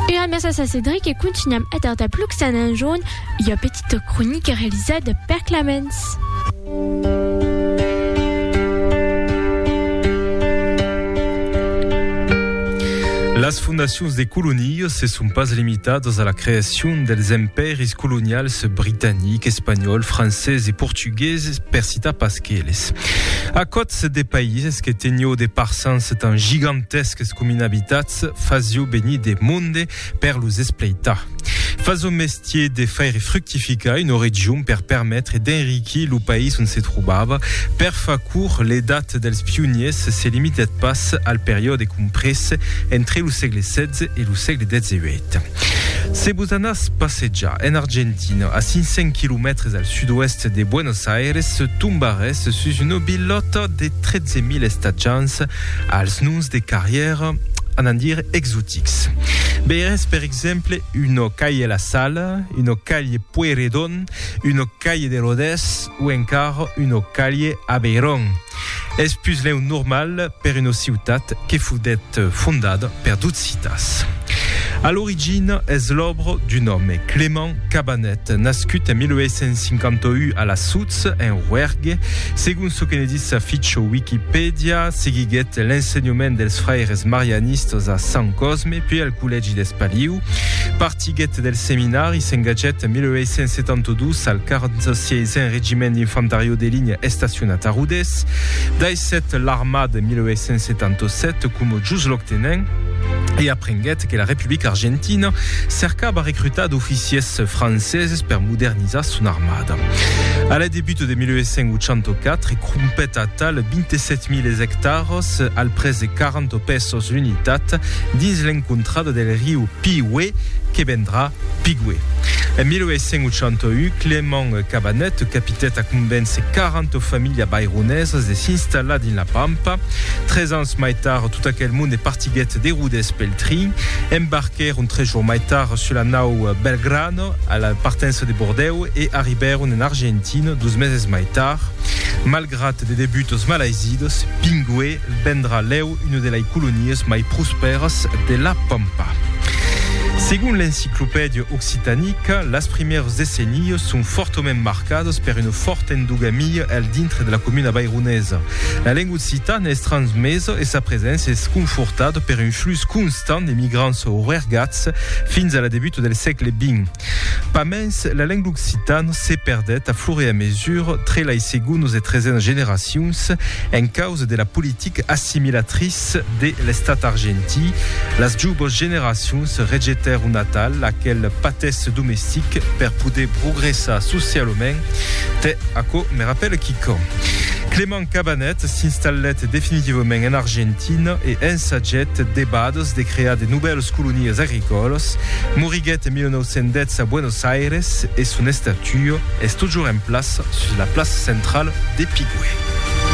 Era mèsa sa Cedric e contunham eth art aplux tan enjorn ua petita cronica realizada per Clamens. Las fondacions de colonias se son pas limitadas a la creacion dels empèris colonials britanic, espanhòl, francés e portugués, per citar pas qu'eles. Aquòts de païses que tenió de parsans tan gigantèsques com inabitats fasió venir de monde per los espleitar. Fasió mestier de faire fructificar una region per permetre d'enriquir lo país ont se trobava. Per far curt, l'edat dels pioniers se limitèt pas al periòde comprés entre lo sègle 16 e lo sègle 18. Se vos anatz passejar en Argentina, a 500 quilomètres al sud-oèst de Buenos Aires, tombarètz sus una vilòta de 13.000 estatjants als noms de carrièra, anant dire, exotics. Veirètz, per exemple, una calle La Salle, una calle Pueyrredon, una calle de Rodés o encara una calle Aveyron. Es puslèu normal per una ciutat que foguèt fondada per dos citas. A l'origina es l'òbra d'un òme, Clément Cabanet, nascut en 1851 a la Soutz, en Roergue. Segon çò que ne ditz sa ficha Wikipèdia, seguiguèt l'ensenhament dels fraires marianistas a Sant Cosme, puèi al collègi d'Espaliu. Siguet del Seminari, s'engatgèt en 1872 al 46n Regiment d'Infantariò de Linha estacionat a Rodés. Daissèt l'armada en 1877 coma jusloc-tenent e aprenguèt que la Republica Argentina cercava recrutar d'oficiers franceses per modernizar son armada. A la debut de 1884 crompèt atal 27.000 ectaras al prètz de 40 pesos l'unitat dins l'encontrada del riu Pi uè que vendrà, piguè. En 1881, Clément Cabanet capitèt a convéncer 40 familhas baironesas de s'installar dins la Pampa. Tres ans mai tard, tot aquel monde partiguèt de Rodés pel trin. Embarquèron tres jours mai tard sus la nau Belgrano, a la partença de Bordèu, e arribèron en Argentina dos meses mai tard. Malgrat de debutos malaizidos, Pinguè vendrà lèu Una de lei colonias mai prospèras de la Pampa. Segon l'Enciclopèdia Occitanica, las primièrs decennias son fòrtament marcadas per una fòrta endogamia al dintre de la comuna vaironesa. La lenga occitana es transmesa e sa preséncia es confortada per un flux constant de migrants oergats fins a la debuta del sègle xx. Pas mens, la lenga occitana se perdèt a fur e a mesur tre lai segonas e tresenas generacions en causa de la politica assimilatriça de l'estat argentí. Las jouvas generacions rejetèron atal aquel patèsse domestic per poder progressar socialament. Tè, aquò me rapèla quicòm. Cabanet s'installèt definitivament en Argentina e ensagèt debades de crear de novèlas colonias agricòlas. Moriguèt en 1910 a Buenos Aires e son estatua es totjorn en plaça sus la plaça centrala de Pigüé.